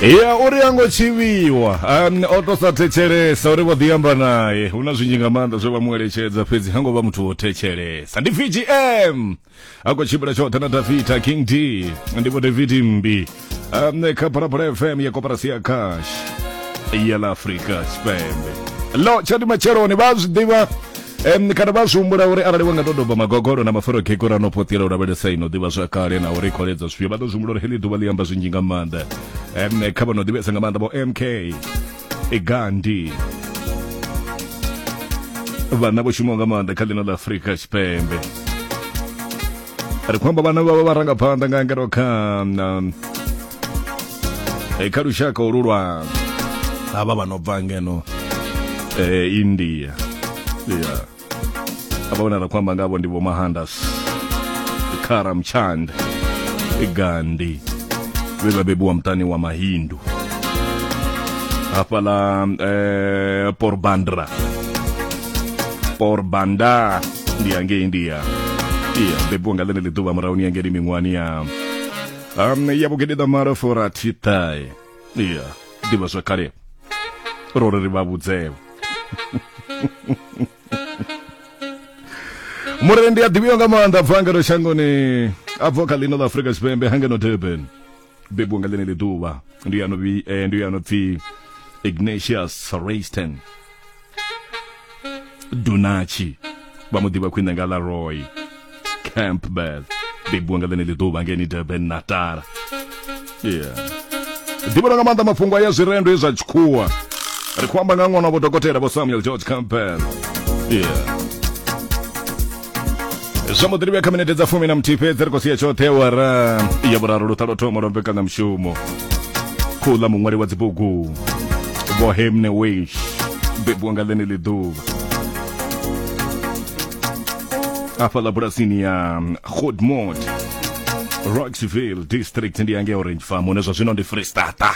ya uri a ngo tshivhiwa um, o to sa thetshelesa uri vho ḓiamba naye hu na zwinzhi nga maanḓa zwe vha mu eletshedza fhedzi ha ngo vha muthu wo thetshelesa ndi vgm a khou tshimbila tshoṱhe na dafita king d ndi vho david mbi um, kha phalaphala fm ya koperasi ya cash ya la afrika tshipembe lo tshati matsheloni vha a zwi ḓivha Um, kana vha zwi humbula uri arali wa nga to doba magogolo na maforo kheko ra no phothela u lavhelesa ino ḓivha zwa kale na uri kholedza zwifhio vha ḓo zwi humbula uri heḽi ḓuvha ḽi amba zwinzhi nga maanḓa um, kha vha no ḓivhesa nga maanḓa vho mk igandi vhana vho shumaho nga maanḓa kha ḽino ḽa afurika tshipembe ri khou amba vhana vhavha vharangaphanḓa nga ngero kha um, eh, kha lushaka olu lwa havha vha no bva ngeno eh, india ya avha vhona ra khou amba ngavho ndi vho mahandas karamchand gandhi vhe vha bebiwa muṱani wa mahindu hafhaḽa eh, porbandra porbanda ndi hangei india iya bebiwa nga ḽeneḽi ḓuvha murahuni ya ngeni miṅwani ya um, ya vhugededa mara forathiṱae iya ḓivha zwa kale ro ri ri vha vhudzewe murendi a ḓivhiwa nga maanḓa bva ngeno shangoni a bva kha ḽino ḽa afurika tshipembe hangeno durban bebiwa nga ḽeneli ḓuvha ndi ya no eh, ndi ya no pfi Ignatius Rayston Dunachi vha mu ḓivha khwine nga ḽa Roy Campbell bebiwa nga ḽeneli ḓuvha ngeni Durban Natal yeah ḓivhona nga maanḓa mafhungo a ya zwirendo zwa tshikhuwa ri khou amba nga ṅwana wa vho dokotela vho Samuel George Campbell yeah zwa muḓirivhe kha minete dza fumi na muthihi fhedzi ri khou sia tshoṱhe wara ya vhuraru luṱa lwo thoma lwa mbekanyamushumo khou ḽa muṅwali wa dzibugu vho hemne wish bebiwa nga ḽene ḽi ḓuvha afha ḽa bulasini ya godmod roxville district ndi yange orange farm hune zwa zwino ndi freestata